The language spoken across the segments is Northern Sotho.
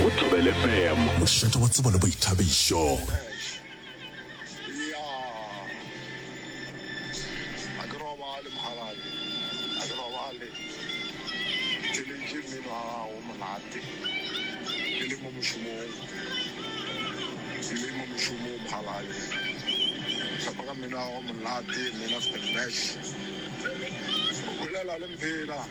go Thobele FM. Mošate wa tsebo le boithabišo.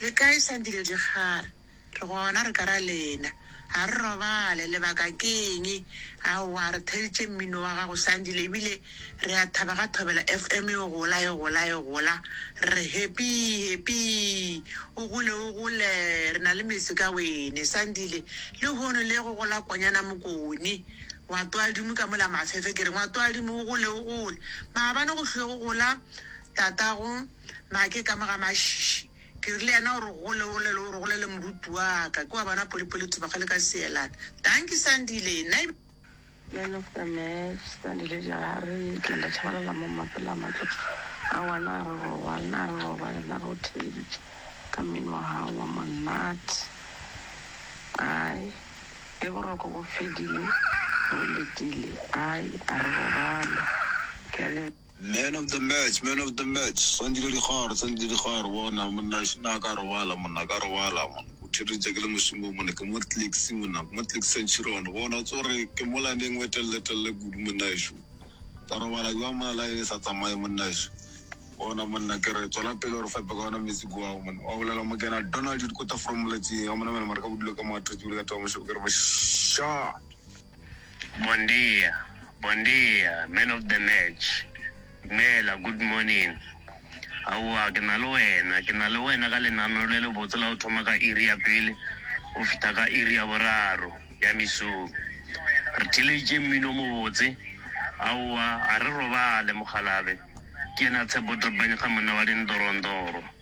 Le kae Sandile Dikgare? Re gona re ka ra lena. A re robale, lebaka ke eng? Aowa, re theeditše mmino wa gago Sandile ebile re a thaba ga Thobela FM e gola, e gola, e gola. Re re happy, happy. O gole, o gole, re na le mese ka wene Sandile. Lehono le go gola konyana mokone. Ngwatoadimo ka mola mafefe ke re ngwatoadimo o gole, o gole. Maabane go hlo go gola tatago. Na ke ka mo ga mašiši? Ke re le yena o re gole gole le o re gole le moruti wa ka. Ke wa bona Polipoli Thubakgale ka Seelane. Dankie Sandile. Na e. Man of the match Sandile Jahare ke nda tšhabalela mo mapele a matlo aowa na re robale na re robale na re o theeditše ka mmino wa gago wa monate ai ge boroko bo fedile re o letile ai a re robale ke a leboga. Man of the match, man of the match, Sandile Dikgare, Sandile Dikgare, bona monna šina ka robala monna, ka robala monna, o thereditše ke le mošomong monna, ke mo tliks monna, ke mo tliks centurion, bona o tsore ke mola neng we telele telele kudu monna ešo, ka robala jwa mona la e sa tsamaye monna ešo, bona monna ke re tswela pele gore fepe ka ona metsi ko ao monna, wa bolela mo kena Donald dikota from moletšing, a mona mena mara ka bodule ka mo a tretsi bile ka taba mošobo ke re bošaa. Bondia, bondia, man of the match, dumela, good morning. Aowa, ke na le wena, ke na le wena ka lenaneo le lebotse la go thoma ka iri ya pele go fihla ka iri ya boraro ya mesong. Re theeleditše mmino o mobotse. Aowa, a re robale, mokgalabje. Ke yena Tshepo Trpanyga, monna wa dindorondoro.